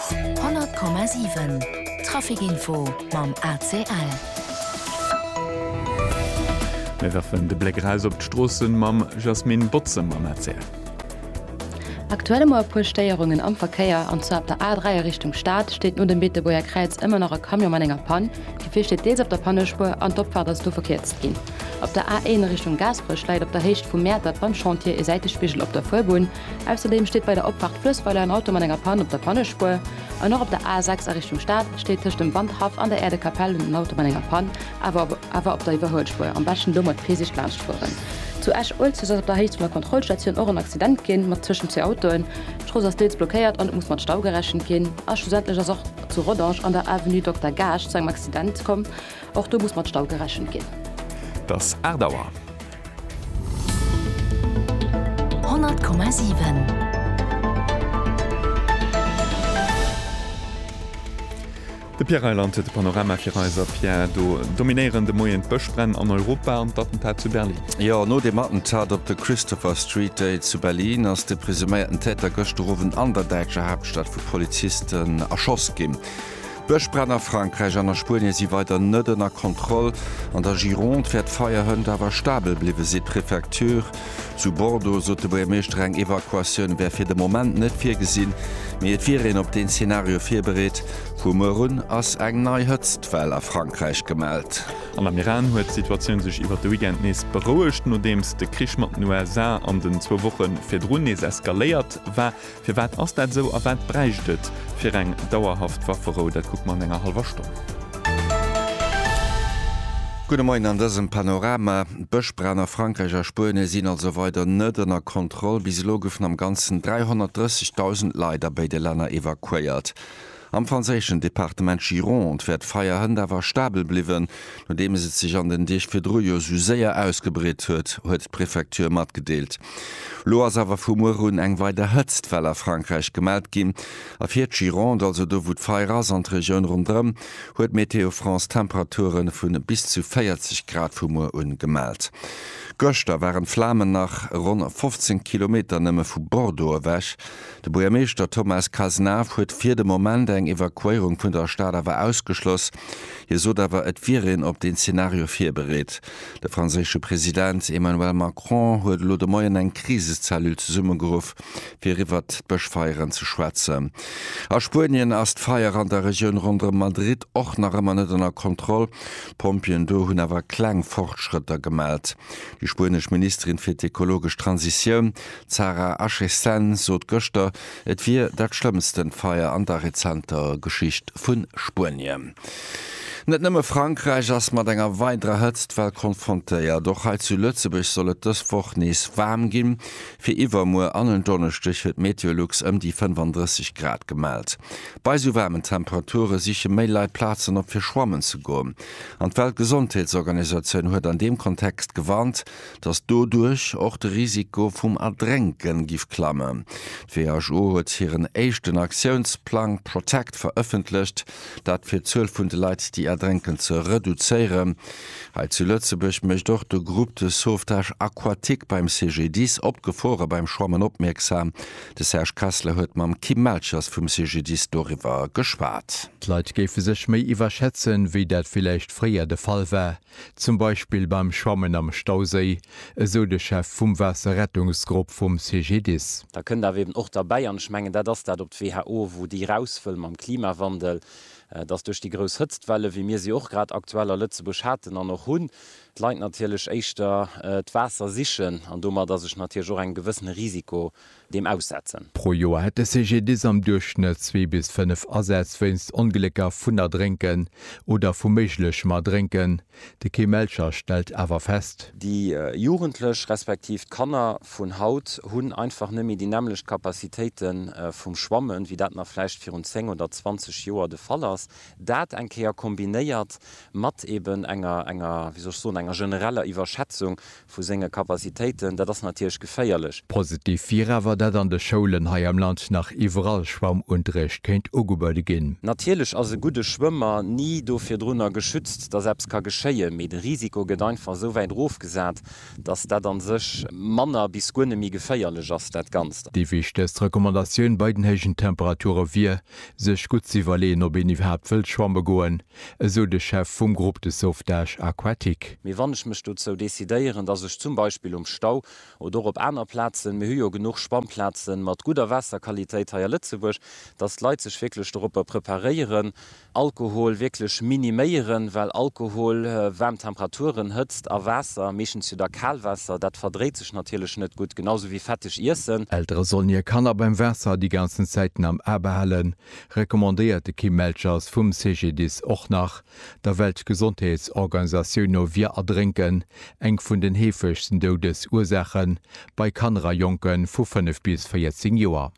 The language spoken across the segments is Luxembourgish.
100,7 Traficinfo mam ACL. Mir werfen de Bléck eraus op d'Stroossen mam Jasmine Botze mam ACL. Aktuell ëmmer e puer Stéierungen am Verkéier, an zwar op der A3 a Richtung Stad steet no dem Beetebuerger Kräiz ëmmer nach e Camion mat enger Pann. D'Gefier steet deels op der Pannespuer an d'Opfaart ass do verkierzt ginn. Op der A1 a Richtung Gaasperech läit op der Héicht vum Mäertert beim Chantier e Säitespigel op der Fuerbunn. Ausserdeem steet bei der Opfahrt Fluessweiler en Auto mat enger Pann op der Pannespuer. An och op der A 6 a Richtung Stad steet tëscht dem Wandhaff an der Äerdekapell en Auto mat enger Pann, awer awer op der Iwwerhuelspuer. Am beschten do mat Virsiicht laanscht fueren. Zu Esch-Uelzecht ass op der Héicht vun der Kontrollstatioun och en Accident ginn, mat tëschent zwee Autoen. D'Strooss ass deels blockéiert an et muss mat Stau gerechent ginn. A schlussendlech ass och zu Rodange an der Avenue Dokter Gaasch zu engem Accident komm. Och do muss mat Stau gerechent ginn. Dass 8 Auer. De Pierre Reyland huet de Panorama fir eis. A Pierre, do dominéieren de Moien d'Bëschbränn an Europa an d'Attentat zu Berlin. Jo, no dem Attentat op de Christopher Street Day zu Berlin ass de presuméierten Täter gëschter Owend an der däitscher Haaptstad vu Polizisten erschoss ginn. Bëschbränn a Frankräich an a Spuenie si weider net ënner Kontroll. An der Gironde wäert d'Feierhënt awer stabel bliwwen, seet d'Prefecture. Zu Bordeaux sot de Buergermeeschter, eng Evakuatioun wär fir de Moment net virgesinn, mee et wier een op deen Zenario virbereet. Vu muer un ass eng nei Hëtztwell a Frankräich gemellt. An am Iran huet d'Situatioun sech iwwer de Weekend nees berouegt, nodeems de Krich mat den USA an den zwou Woche virdrun nees eskaléiert war. Firwat ass dat esou a wat bräicht et fir eng dauerhaft Wafferou? Dat kucke mer an enger hallwer Stonn. Gudde Moien an dësem Panorama. D'Bëschbränn a Frankräich a Spuenie sinn also weider net ënner Kontroll. Bis elo goufen am Ganzen 330.000 Leit a béide Länner evakuéiert. Am franséischen Departement Gironde wär d'Feierhënt awer stabel bliwwen, nodeems et sech an den Deeg virdru jo sou séier ausgebreet huet, huet d'Prefecture matgedeelt. Lo ass awer vu muer un eng weider Hëtztwell a Frankräich gemellt ginn. A fir d'Gironde, also do wou d'Feier ass, an d'Regioun rondrëm, huet Météo France Temperature vu bis zu 40 Grad vu muer un gemellt. Gëschter waren d'Flamen nach ronn 15 Kilometer nëmme vu Bordeaux ewech. De Buergermeeschter Thomas Cazenave huet fir de Moment eng Evakuéierung vun der Stad awer ausgeschloss. Hie sot awer, et wier een op deen Zeenario virbereet. De franséische President Emmanuel Macron huet elo de Moien eng Krisecellule zesummegeruff, fir iwwert d'Bëschfeieren ze schwätzen. A Spuenien ass d'Feier an der Regioun ronderëm Madrid och nach ëmmer net ënner Kontroll. D'Pompjeeën do hunn awer kleng Fortschrëtter gemellt. Déi spuenesch Ministerin fir d'ekologesch Transitioun, D'Sarah Achessen sot gëschter, et wier dat schlëmmsten Feier an der rezenter Geschicht vu Spuenien. Net nëmme Frankräich ass mat enger weiderer Hëtztwell konfrontéiert. Och hei zu Lëtzebuerg soll et dës Woch nees waarm ginn. Fir iwwermuer an en Donneschdeg huet Meteolux ëm déi 35 Grad gemellt. Bei esou waarmen Temperature siche méi Leit Plazen op fir schwammen ze goen. An d'Weltgesondheetsorganisatioun huet an deem Kontext gewarnt. datt doduerch och de Risiko vum Erdrénken giff klammen. D'WHO huet hiren éischten Aktiounsplang Protect verëffentlecht, dat fir d'Zuel vun de Leit déi erdrénken ze reduzéieren. Hei zu Lëtzebuerg mécht och de Groupe de Sauvetage Aquatique beim CGDIS op d'Gefore beim Schwammen opmierksam. De Serge Kessler huet mam Kim Melchers vum CGDIS doriwwer geschwat. D'Leit géife sech méi iwwerschätzen, wéi dat villäicht fréier de Fall war. Zum Beispill beim Schwammen am Stauséi, esou de Chef vum Waasserrettungsgrupp vum CGDIS. Da kënnt awer eben och derbäi, an ech mengen dat ass dat op d'WHO, wou déi raus wëll mam Klimawandel, dass duerch déi grouss Hëtztwelle wéi mir se och grad aktuell a Lëtzebuerg haten an och hunn, d'Leit natierlech éischter d'Waasser sichen an domat ass ech natierlech och engem gewëssene Risiko deem aussetzen. Pro Joer hätt de CGDIS am Duerchschnëtt zwee bis fënnef Asätz wéinst Onglécker vun Erdrénken oder vu méiglechem Erdrénken. De Kim Melcher stellt awer fest. Déi Jugendlech respektiv d'Kanner vun haut hunn einfach net méi déi nämmlecht Capacitéite vum Schwammen, wéi dat nach vläicht virun 10 oder 20 Joer de Fall ass. Dat eng Kéier kombinéiert mat eben enger, enger, wéi soll ech soen, enger genereller Iwwerschätzung Vu senge Capacitéiten, dat ass natierlech geféierlech. Positiv wier awer, datt an de Schoulen hei am Land nach iwwerall Schwammunterrecht kéint ugebuede ginn. Natierlech ass e gudde Schwëmmer ni do virdrunner geschützt, datt eppes ka geschéien, mee de Risiko gëtt einfach esou wäit erofgesat, datt dat a sech manner bis guer net méi geféierlech ass, dat Ganzt. Déi wichtegst Recommandatioun bei den héijen Temperature wier, sech gutt ze iwwerleeën, ob een iwwerhaapt wëllt schwamme goen, esou de Chef vum Groupe de sauvetage aquatique. Mee wann ech mech dozou decidéieren, dass ech zum Beispill um Stau oder och op aner Plazen, mir hu jo genuch Schwammplazen mat gudder Waasserqualitéit hei a Lëtzebuerg, dass d'Leit sech wierklech doropper preparéieren, Alkohol wierklech miniméieren, well Alkohol, waarm Temperaturen, Hëtzt a Waasser, meeschtens jo da Kalwaasser, dat verdréit sech natierlech net gutt, genau esou wéi fetteg Iessen. Eltere sollen hir Kanner beim Waasser déi ganzen Zäiten am A behalen, recommandéiert de Kim Melchers vum CGDIS och nach, der Weltgesondheetsorganisatioun no wier Erdrénken eng vun den heefegsten Doudesursaache bei Kanner a Jonke vu 5 bis 14 Joer.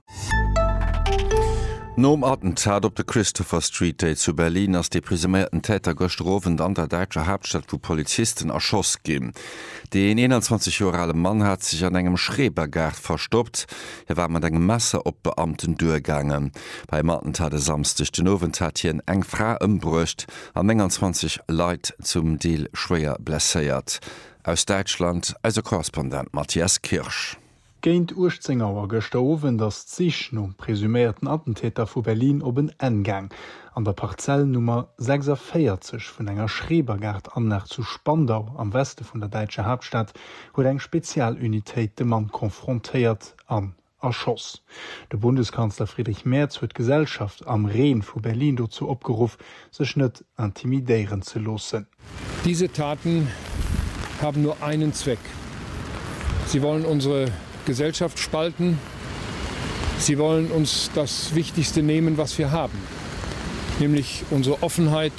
Nom Attentat op de Christopher Street Day zu Berlin ass dee presuméierten Täter gëschter Owend an der däitscher Haaptstad vu Polizisten erschoss ginn. Deen 21 Joer ale Mann hat sech an engem Schrebergaart verstoppt, Hie war mat engem Messer op d'Beamten duergaangen. Beim Attentat e Samsdeg den Owend hat hien eng Fra ëmbruecht an 29 Leit zum Deel schwéier blesséiert. Aus Däitschland eise Korrespondent Matthias Kirsch. Géint 18 Auer gëschter Owend ass d'Sich nom presuméierten Attentäter vu Berlin op en Enn gaang. An der Parzell Nummer 46 vun enger Schrebergaart-Anlag zu Spandau am Weste vun der däitscher Haaptstad huet eng Spezialunitéit de Mann konfrontéiert an erschoss. De Bundeskanzler Friedrich Merz huet d'Gesellschaft am Reen vu Berlin dozou opgeruff, sech net intimidéieren ze loossen. Diese Taten haben nur einen Zweck, Sie wollen unsere Gesellschaft spalten, sie wollen uns das Wichtigste nehmen, was wir haben, nämlich unsere Offenheit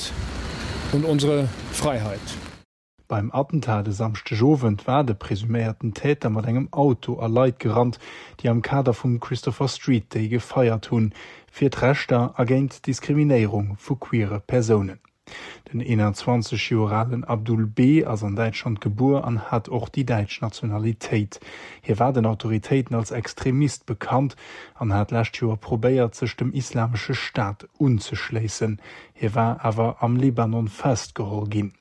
und unsere Freiheit. Beim Attentat e Samschdeg Owend war de presuméierten Täter mat engem Auto a Leit gerannt, déi am Kader vum Christopher Street Day gefeiert hunn, fir d'Rechter a géint d'Diskriminéierung vu queere Persounen. Den 21 Joer alen Abdul B. ass an Däitschland gebuer an hat och déi däitsch Nationalitéit. Hie war den Autoritéiten als Extremist bekannt an hat d'lescht Joer probéiert, sech dem Islamesche Staat unzeschléissen. Hie war awer am Libanon festgeholl ginn.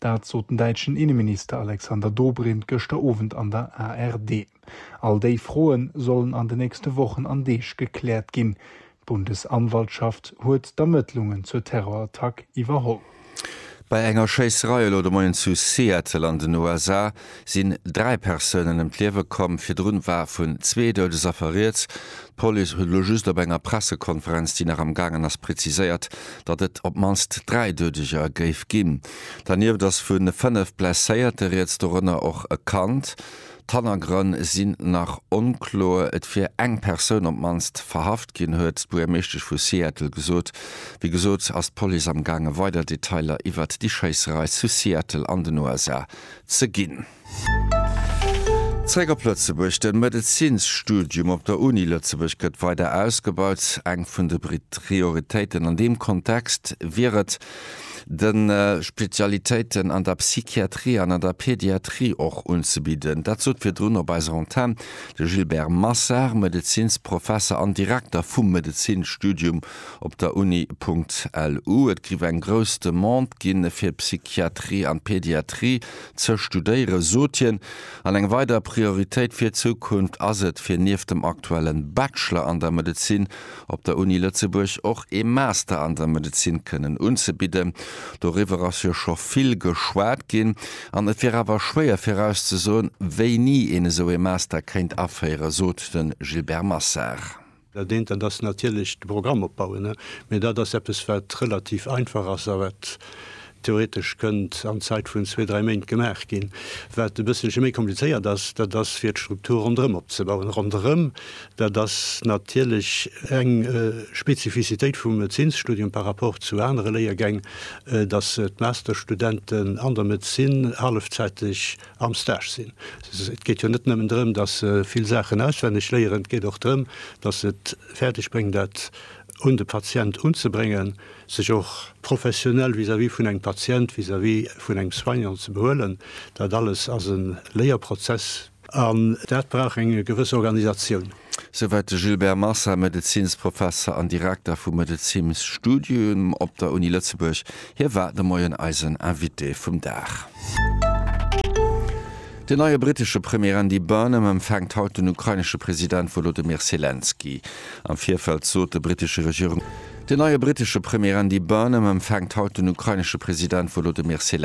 Dat sot den däitschen Inneminister Alexander Dobrindt gëschter Owend an der ARD. All déi Froen sollen an de nächste Wochen an Deeg gekläert ginn. D'Bundesanwaltschaft huet d'Ermëttlungen zur Terrorattack iwwerholl. Bei enger Schéisserei elo de Moien zu Seattle an den USA sinn dräi Persounen ëm d'Liewe komm, virdrun war vun zwee Doudesaffer rieds. D'Police huet elo just op enger Pressekonferenz, déi nach am gaangen ass, präziséiert, datt et op d'mannst dräi Doudeger géif ginn. Dernieft ass vu fënnef Blesséierte rieds, dorënner och e Kand. D'Hannergrënn sinn nach onkloer. Et wier eng Persoun op d'mannst verhaft ginn, huet d'Buergermeeschtesch vu Seattle gesot. Wéi gesot ass d'Police am gaange weider Detailer iwwert déi Schéisserei zu Seattle an den USA ze ginn. Zréck op Lëtzebuerg, De Medezinsstudium op der Uni Lëtzebuerg gëtt weider ausgebaut. Eng vun de Prioritéiten an deem Kontext wier et, de Spezialitéiten an der Psychiatrie an an der Pediatrie och unzebidden. Dat sot virdrun op eiser Antenn de Gilbert Massard, Medezinsprofesser an Direkter vum Medezinsstudium Op der Uni.lu, Et giff eng grouss Demande ginn, fir Psychiatrie an Pediatrie ze studéieren, sot hien. An eng weider Prioritéit fir d'Zukunft ass et, fir nieft dem aktuellen Bachelor an der Medezin op der Uni Lëtzebuerg och ee Master an der Medezin kënnen unzebidden. Doriwwer ass jo scho vill geschwat ginn an et wier awer schwéier virauszesoen, wéini een esou ee Master kéint aféieren, sot de Gilbert Massard. Dat eent, dat ass natierlech de Programm opbauen, mä dat ass eppes, wat relativ einfach ass a wat theoretesch kënnt an d'Zäit vun zwee, dräi Méint gemaach ginn. Wat e bësselche méi komplizéiert ass, dat ass fir d'Struktur ronderëm opzebauen. Ronderëm, dat ass natierlech eng Spezifizitéit vum Médezinsstudium par rapport zu anere Léiergäng, dass d'Masterstudenten an der Medezin hallefzäiteg am Stage sinn. Et geet jo net nëmmen drëm, datt se vill Saachen auswenneg léieren, et geet och drëm, datt se et fäerdeg bréngen, dat un de Patient unzebréngen, sech och professionell vis-à-vis vun engem Patient, vis-à-vis vun engem Soignant ze behuelen. Dat alles ass e Léierprozess an dat brauch eng gewëss Organisatioun. Souwäit de Gilbert Massa, Medezinsprofesser an Direkter vum Medezinsstudium op der Uni Lëtzebuerg. Hie war de Moien eisen Invité vum Dag. Den neie brittesche Premier Andy Burnham empfänkt haut den ukrainesche President Wolodymyr Selenskyj. Am Virfeld sot de brittesche Regierungs. Den neie brittesche Premier Andy Burnham empfänkt haut den ukrainesche President Wolodymyr Selenskyj.